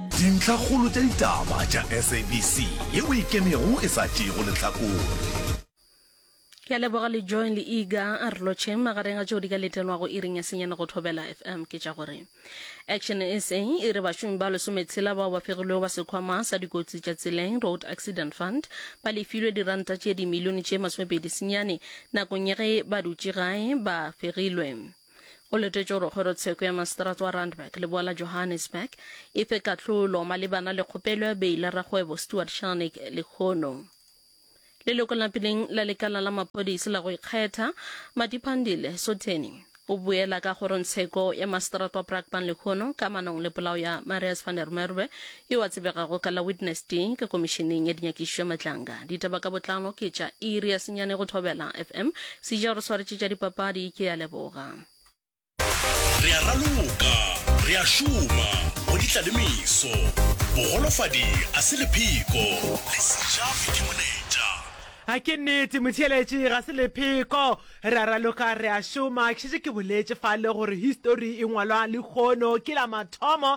Dintlhakgolo tša ditaba tša SABC ye o e kemego e sa tšeego lehlakore. Ke a leboga le Joy le Iga a re lotšheng magareng a tšeo di ka letelwago iring ya senyane go Thobela FM ke tša gore Action SA e re bašomi ba lesometshela bao ba fegilwego ba sekhwama sa dikotsi tša tseleng Road Accident Fund ba lefilwe diranta tše dimilione tše masomepedi senyane nakong ya ge ba dutše gae ba fegilwe Go letetšwe gore kgorotsheko ya maseterata wa Randburg leboa la Johannesburg e fe kahlolo malebana le kgopelo ya beile rakgwebo Stuart Sharnik lehono. Leloko la peleng la lekala la maphodisi la go ikgetha, Madiphandile Sotheni, o boela ka kgorotsheko ya maseterata wa Brakpan lehono ka manong le polao ya Marius van der Merwe Yo a tsebegago ka la Witness T ka Komišeneng ya Dinyakišišo ya Matlanga. Ditaba ka botlalo ke tša iri ya senyane go Thobela FM. Sija o re swaretše tša dipapadi, ke a leboga. Re a raloka, re a šoma go ditla le meso. Bogolofadi a se lepheko, le Sija o ikemonetša. A ke nnete, motheeletši ga se lepheko. Re a raloka, re a šoma. Ke šetše ke boletše fale gore histori e ngwalwa lekgono. Ke la mathomo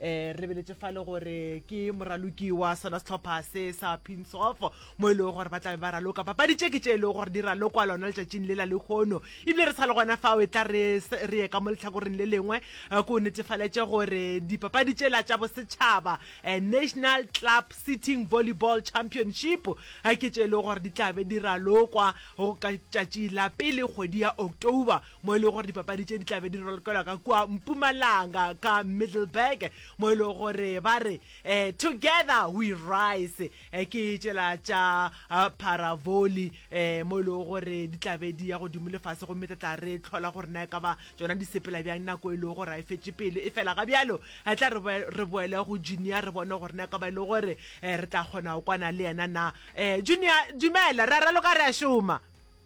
re beletše fa le gore ke moraloki wa sona setlhopha se sa pinsof mo e lego gore ba tlabe ba raloka papadi tše ke tše e lego gore di ralokwa lona letšatšing le la lekgono ebile re sa le gona fao e tla re ye ka mo letlhakoreng le lengwe eh, ko netefaletše gore dipapadi tše la tša bosetšhaba eh, national club sitting volleyball championship eh, ke tše e lego gore di tlabe di ralokwa go ka tšatši la pele kgwedi ya october mo e lego gore dipapadi tše di tlabe di rolokelwa ka kua mpumalanga ka middleburg mo e lego gore ba re um together we rise um ke tšela tša uh, paravoli um mo e lego gore di tlabe di ya godimo lefase gomme tla tla re tlhola gore na e ka ba tsona di sepela bjang nako e lego gore a e fetše pelo e fela ga bjalo a tla re boele go junior re bone gore na e ka ba e le gore um re tla kgona go kwana le yena na um junior dumela re a raloka re a šoma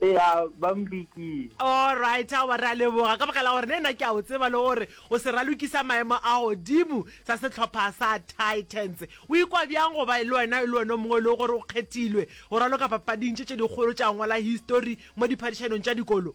ea ba mpikile. Alright, aowa, re a leboga ka baka la gore ne nna ke a o tseba le gore o seraloki sa maemo a godimo sa sehlopha sa Titans. O ikwa bjang go ba le wena e le wena o mongwe e lego gore o kgethilwe go raloka papading tše tše dikgolo tša ngwala histori mo diphadišanong tša dikolo?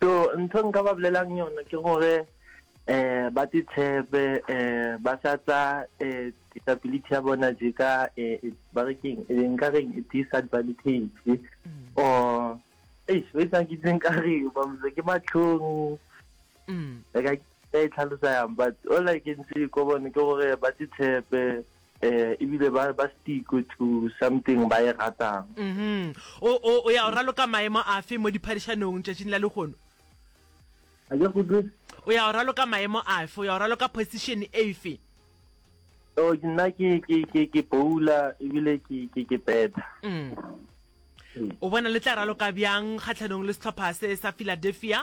So ntho e nka ba bolelang yona ke gore um ba titshepe um ba sa tsa um disability ya bona je ka um ba re keng nka reng disadvantage or eish o etsang ke itseng ka re bamse ke matlhong ka e tlhalosa yang but all I can say ko bone ke gore ba titshepe Eh, ebile ba, ba stick to something ba e ratang. Mm-hmm. O, o, o ya o raloka maemo afe mo diphadišanong tšatšing la lehono? A ke go dutse? O ya o raloka maemo afe? O ya o raloka position efe? Oh, nna ke ke ke ke bowla ebile ke ke ke peta mm. mm. o bona le tla raloka bjang kgatlhanong le setlhopha se sa philadelphia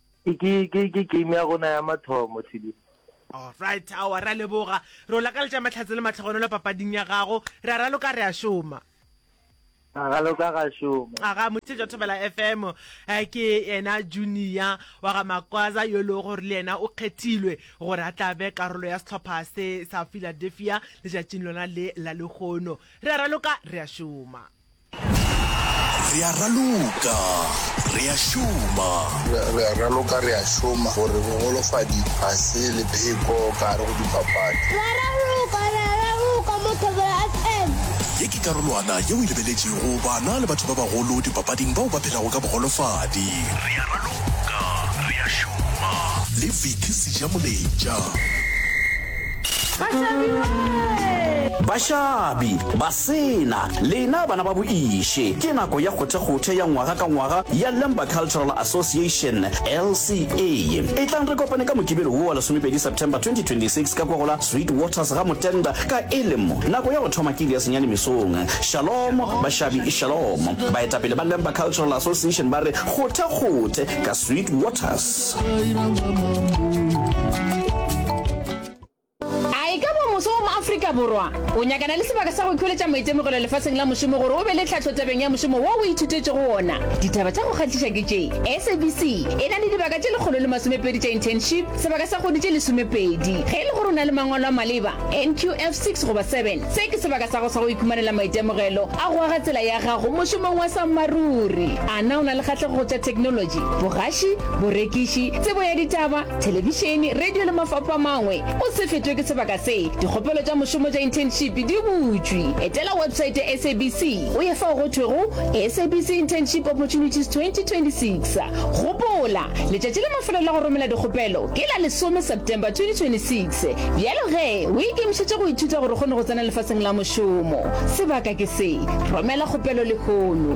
Ke ke ke ke game ya rona ya mathomo Tshidi. Alright aowa ra leboga. Re o lakaletša mahlatse le matlhogonolo papading ya gago. Re a raloka re a šoma. Ra raloka ra šoma. Aga motse jwa Thobela FM ke yena Junior wa ga Makwaza yo le gore le yena o kgethilwe gore a tla be karolo ya sehlopha se sa Philadelphia letšatšing lona le la lehono. Re a raloka re a šoma. Re a raloka, re a šoma. Re a raloka, re a šoma gore bogolofadi ga se lepheko ka gare go dipapadi. Re a raloka, re a raloka mo Thobela FM. Ye ke karolwana yeo e lebeletšego bana le batho ba bagolo dipapading bao ba phelago ka bogolofadi. Re a raloka, re a šoma. Le Vicky Sejamoletša. Bashabi! Bashabi! Bashabi! Sena, lena bana ba boIše, ke nako ya kgothekgothe ya ngwaga ka ngwaga ya Lemba Cultural Association, LCA. Etlang re kopane ka Mokibelo wo wa lesomepedi September 2026 ka kwa go la Sweet Waters ga Motenda ka elemo nako ya go thoma kili ya senyane mesong. Shalom, bašabi, shalom. Baetapele ba Lemba Cultural Association ba re kgothekgothe ka Sweet Waters. A e ka ba mose wa mo Afrika Borwa o nyakana le sebaka sa go ikhweletša maitemogelo lefaseng la mošomo gore o be le tlhahlo tabeng ya mošomo wo o ithutetšego wona? Ditaba tša go kgahliša ke tše, SABC e na le dibaka tše lekgolo le masomepedi tša internship, sebaka sa kgwedi tše lesomepedi. Ge e le gore o na le mangwalo a maleba, NQF six goba seven, se ke sebaka sa gago sa go ikhumanela maitemogelo a go aga tsela ya gago mošomong wa sammaruri. A na o na le kgahlego go tša theknolotši, bogaši, borekiši, tsebo ya ditaba, thelebišene radio le mafapho a mangwe o se fetwe ke sebaka se dikgopelo tša mošomo tša internship di butšwe etela website ya sabc o ye fao go thwego sabc internship opportunities 2026 gopola letšatši le mafelo la go romela dikgopelo ke la lesome september 2026 bjalo ge o ikemišetše go ithuta gore o kgone go tsena lefaseng la mošomo sebaka ke se romela kgopelo lehono